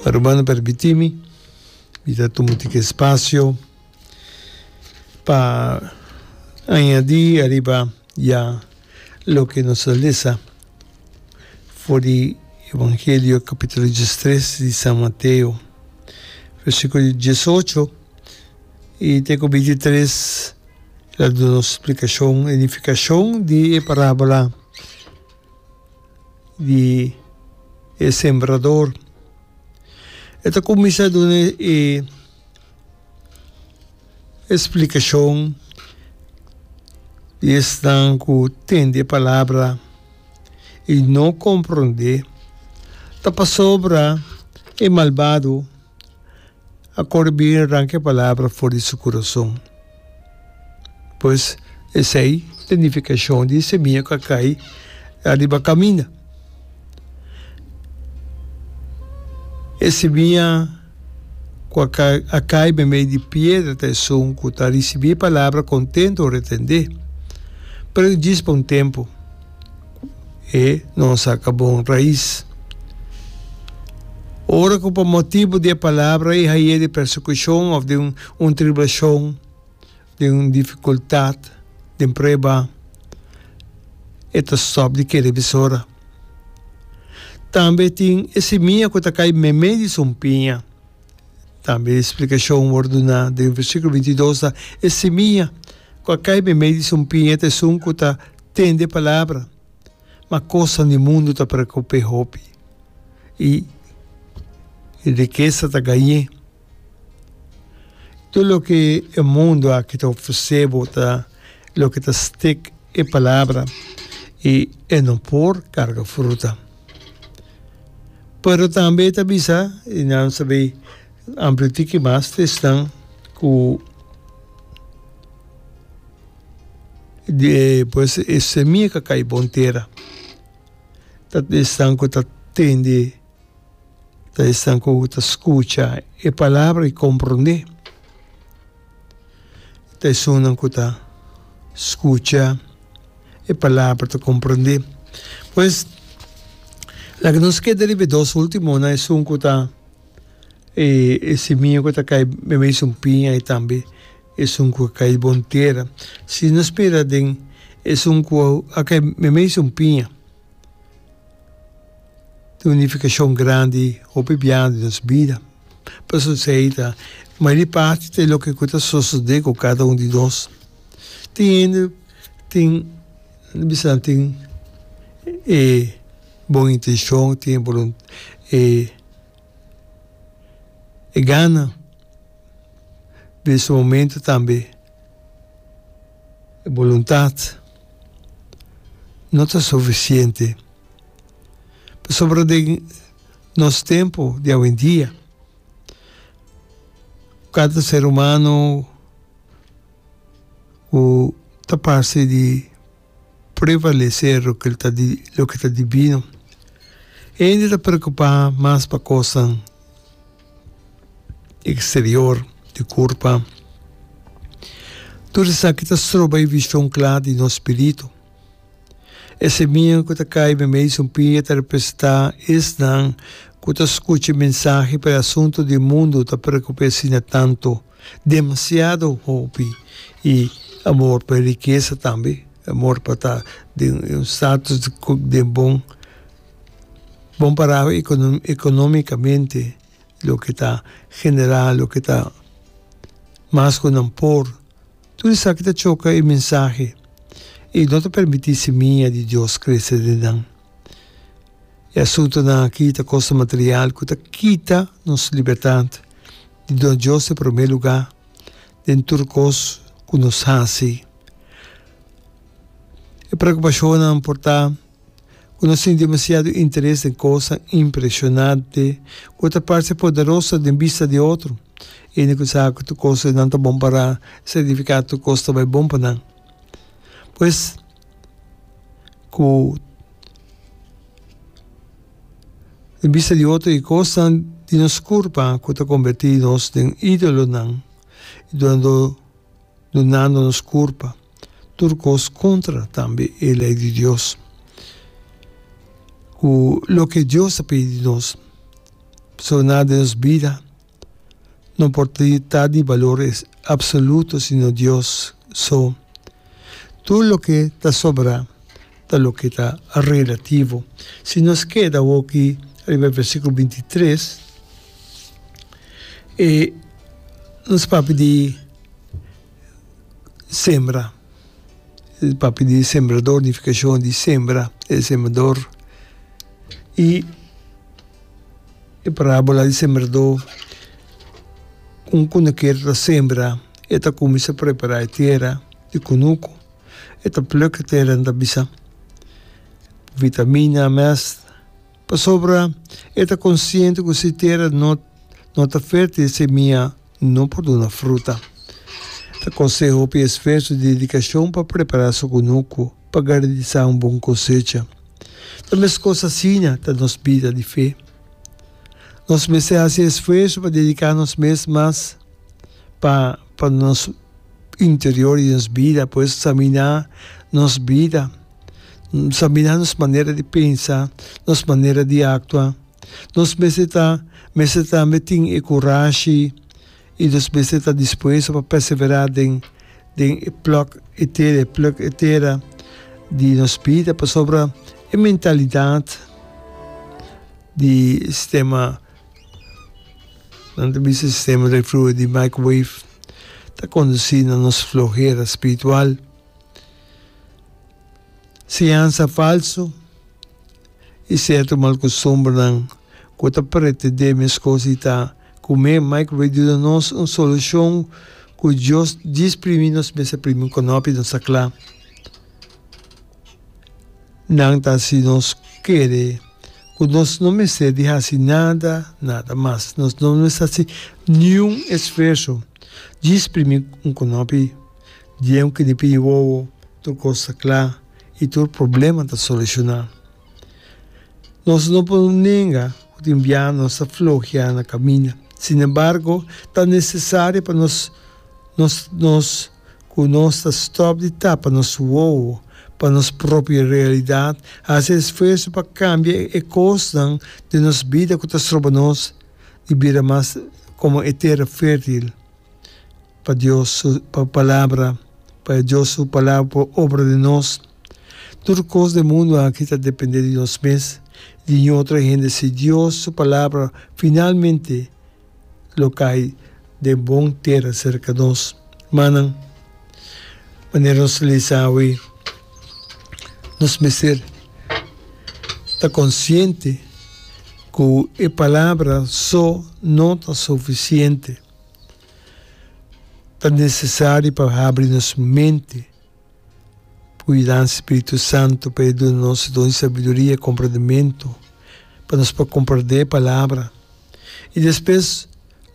Rumannan permití mi, mi ta tuma un tikee spasio pa añadí ariba ya loke nos a lesa for di Evangelio kapitulo diestres di San Mateo, versikulo di diesocho i te ku bintitres, ta duna nos splikashon, idifikashon di e parábola. di e sembrador. E ta kuminsá duna e splikashon di esnan ku tende e palabra i no komprondé. Ta pasobra e malbado a kore bier ranka e palabra for di su kurason. Pues esei ta nifikashon di e semia ku a kai ariba kaminda. E semia ku a kai a kai me mei di piedra ta esun ku ta risibí e palabra kontentu retendé, pero djis pa un tempu. e no a saca bon raiz. Ora cu pa motibu di e palabra i haye di persecucion of di un tribulacion, di un dificultad, di un prueba, e ta stop di kere bisora. Tambe tin e simia cu ta cay meme di sumpiña. Tambe e explicacion word duna den versiculo bintidos ta, e simia cu a cay meme di sumpiña ta esun cu ta Tende palabra, ma kosnan di mundu ta preokup'é hopi, i e rikesa ta gañ'é. Tur loke e mundu aki ta ofresé bo ta loke ta stik e palabra, i e no por karga fruta. Pero tambe e ta bisa, i nan sab'é ampliu tiki mas, ta esnan ku. de pues e semia ka kai bon tera, ta esnan ku ta tende, ta esnan ku ta skucha e palabra i komprondé, ta esunnan ku ta skucha e palabra ta komprondé, pues laga nos keda riba e dos ultimonan esun ku ta e semia ku ta kai mesun piña tambe. Esun ku a kai bon tera, si no spera den esun ku a kai meimei esun piña. Tin un nifikashon grandi hopi biaha di nos bida. Pasobra esei ta mayoria parti ta loke ku ta sosodé ku kada un di nos. Tin hende tin, nan bisa nan tin e bon intenshon, tin e. e gana den su momento tambe e boluntad no ta suficiente pasobra den nos tempo di awendia cada ser humano cu ta parsi di. prevalecer loke ta di loke ta divino. Hende ta preocupa mas pa cosnan exterior di curpa. Tur esaki ta stroba e vision cla di nos spirito. E semia cu ta cay meimei esun pia ta representa esnan cu ta scucha e mensahe pa e asunto di mundo ta preocupa asina tanto. Demasiado hopi y amor pa e rikesa tambe, amor pa ta den un status den bon, bon pará economicamente loke ta generá, loke ta mas ku nan por, tur esaki ta choka e mensahe y no ta permití semia di Dios krese den nan. E asuntunan aki ta kos material ku ta kita nos libertat di duna Dios e promé lugá den tur kos ku nos hasi. E preokupashonnan por ta ku nos tin demasiado interes den kosnan impreshonante ku ta parse poderoso den bista di otro. E no kisa ku tur kos ku nan ta bon pa nan signifiká tur kos ta bai bon pa nan. Pues, ku den bista di otro e kosnan di nos kurpa ku ta kombetí nos den idolonan, dunando nos kurpa tur kos kontra tambe e lei di Dios, ku loke Dios a pidi di nos. Pasobra nan den nos bida. No por ta di balor absoluto sino Dios so. Tur loke ta sobra ta loke ta relativo. Si nos keda awoki riba e versikulo binti i tres, e nos papia di sembra, nos papia di sembrador, nifikashon di sembra, e sembrador i. E parábola di sembradó, Un kunuker ta sembra, e ta kuminsá prepará e tera. E kunuku, e ta pluk e tera, e ta bisa, Vitamina, mèst. Pasobra e ta konsiente ku si e tera no ta fértil, e semia. No por duna fruta. Ta kosé hopi esfuerso di dedikashon pa prepará su kunuku pa garantisá un bon kosecha. Ta meskos asina ta nos bida di fe. Nos mester hasi esfuerso pa dediká nos mes mas pa pa nos interior di nos bida por eksaminá nos bida, eksaminá nos manera di pensa, nos manera di aktua. Nos mester ta mester tambe tin e kurashi i nos mester ta dispuesto pa perseverá den den e plòk e tera e plùk e tera di nos bida pasobra e mentalidat di sistema nan ta bisa e sistema di fluye di microwave ta kondusí na nos flohera spiritual, siñansa falsu. i serto malkostumbernan ku ta pretendé meskos di ta kum'é. Mike Ray duna nos un solushon ku Dios djis primi nos mes a primi un konòpi. Nos ta kla nan ta si nos kere ku nos no mester di hasi nada, nada mas. Nos no mester hasi niun esfuerso djis primi un konòpi. Di e un kinipi wowo tur kos ta kla. i tur problema ta solushoná. Nos no por nenga ku tin bia nos ta floheá na kaminda. Sinembargo, ta nesesario pa nos nos nos ku nos ta stòp di tapa nos wowo pa nos propio realidat, hasi esfuerso pa kambia e kosnan den nos bida ku ta stroba nos di bira mas komo e tera fértil. pa Dios su Palabra, pa e Dios su Palabra por obra den nos. Tur cos den mundo aki ta depende di nos mes, di yin otro hende. Si Dios su Palabra finalmente lo cay den bon tera cerca nos, manan, manera nos ta lees awe, nos mester ta consciente cu e Palabra so no ta suficiente. Ta nesesari pa habri nos mente ku yudansa di Spiritu Santu pa e duna nos don di sabiduria i komprendementu pa nos por komprendé e Palabra. I despues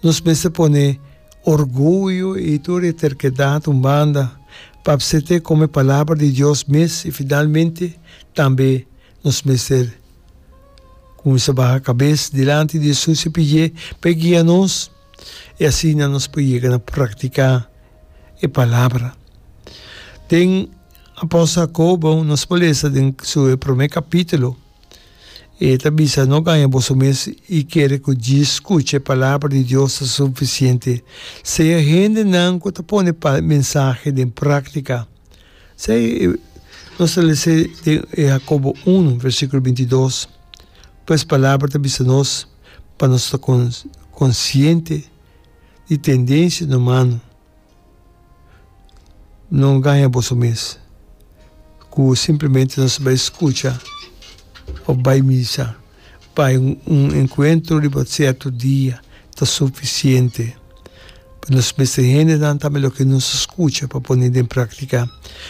nos mester pone orguyo i tur e terkedat un banda pa apsept'é komo e Palabra di Dios mes. I finalmente tambe nos mester kuminsa baha kabes dilanti di Jesus i pidié pa e guia nos. i asina nos por yega na praktiká e palabra. Den apòstel Jakobo nos por lesa den su e promé kapítulo, e ta bisa, No gaña boso mes i kere ku djis skucha e palabra di Dios ta sufisiente. Sea hendenan ku ta pone pa mensahe den práktika. Sa e nos ta lese den e Jakobo unu, versíkulo binti dos? Pues palabra ta bisa nos, Pa nos ta konsiente di tendensianan humano, no gaña boso mes ku simplemente nos bai skucha òf bai misa, bai un enkuentro riba sierto dia ta sufisiente. Pa nos mester hendenan tambe loke nos a skucha pa pone den praktika.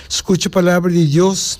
Skucha Palabra di Dios.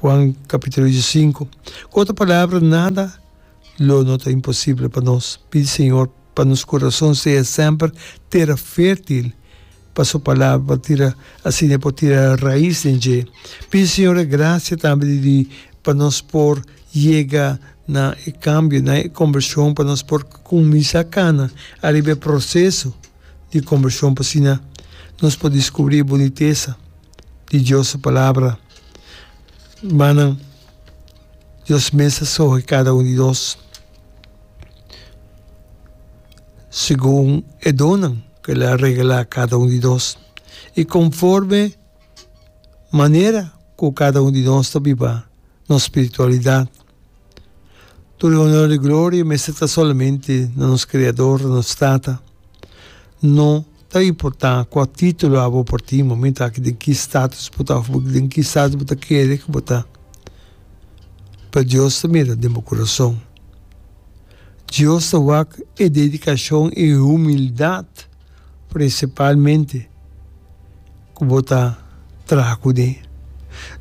Juan capítulo di sinku. Ku otro palabra, nada lo no ta imposible pa nos. Pidi Señor pa nos kurason sea semper tera fertil pa su palabra, pa tira asina e por tira rais den dje. Pidi Señor e gracia tambe di di pa nos por yega na e cambio, na e conversion, pa nos por cuminsa cana ariba e proceso. di kombershon pa asina nos por diskubrí bunitesa di Dios su Palabra. Rumannan, Dios mes a skohe kada un di nos segun e donnan ku el a regalá kada un di nos i konforme manera ku kada un di nos ta biba nos spiritualidat. Tur e honor i gloria mester ta solamente na nos Creador, na nos Tata. No ta importa cua titulo abo por tin momento aki, den ki status bo ta, of den ki status bo ta kere cu bo ta, pero Dios ta mira den bo curason. Dios ta wak e dedicacion, e humildad. prinsipalmente ku bo ta traha ku de.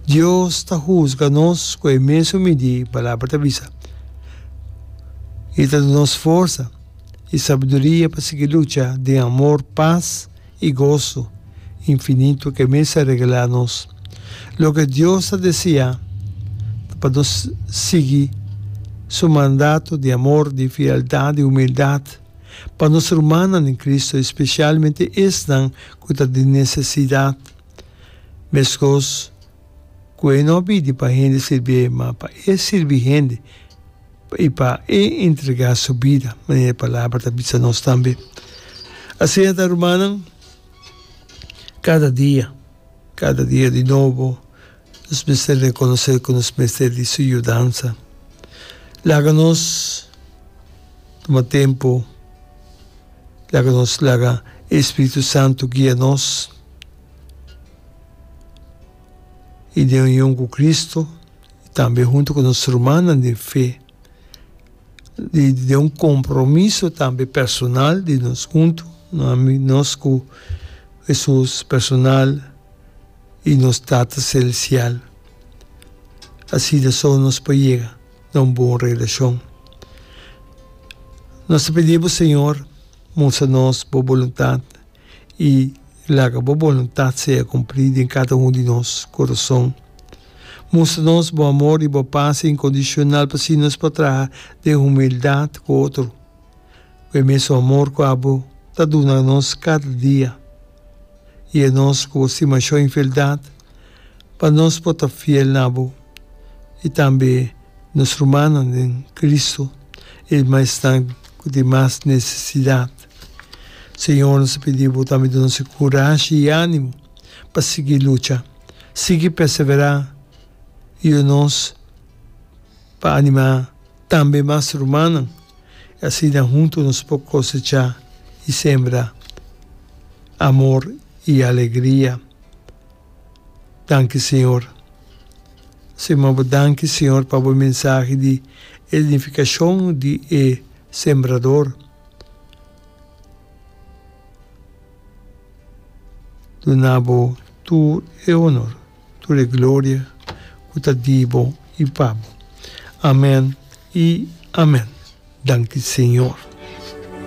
Dios ta husga nos ku e mesun midí Palabra ta bisa. E ta duna nos forsa i sabiduria pa sigui lucha den amor, pas i goso infinitu ku e mes a regalá nos. Loke Dios ta deseá ta pa nos sigui Su mandato di amor, di fieldat, di humildat. pa nos rumannan den Cristo, especialmente esnan cu ta den necesidad. Mescos cu e no bidi pa hende sirbi'e, ma pa e sirbi hende y pa e entrega su bida, manera e Palabra ta bisa nos tambe. Asina ta, rumannan, cada dia, cada dia di nobo, nos mester rekonosé ku nos mester di su yudansa. Laga nos tuma tempu, laga nos laga e Spiritu Santu guia nos i den union ku Kristu i tambe huntu ku nos rumannan di fe, di den un kompromiso tambe personal di nos huntu, nos ku Hesus personal. i nos Tata Selestial. Asina so nos por yega na un bon relacion. Nos ta pidi bo, Señor, mustra nos bo boluntad i laga bo boluntad sea cumpli den cada un di nos corazon. Mustra nos bo amor i bo paz incondicional p'asina nos por traha den humildad cu otro. ku e mesun amor ku abo ta duna nos kada dia, i e nos ku bo stima shon i fieldat, pa nos por ta fiel na bo i tambe nos rumannan den Kristu, e maesnan ku tin mas nesesidat. Señor, nos ta pidi bo tambe duna nos e kurashi i ánimo pa sigui lucha, sigui perseverá, i yu nos pa animá. Tambe mas rumannan, i asina huntu nos por kosechá i sembra amor i alegria. Danki Señor. Suma bo danki Señor pa bo mensahe di e nifikashon di e sembrador. Duna bo tur e honor. tur e gloria cu ta di Bo y pa Bo. Amen y amen. Danki Señor.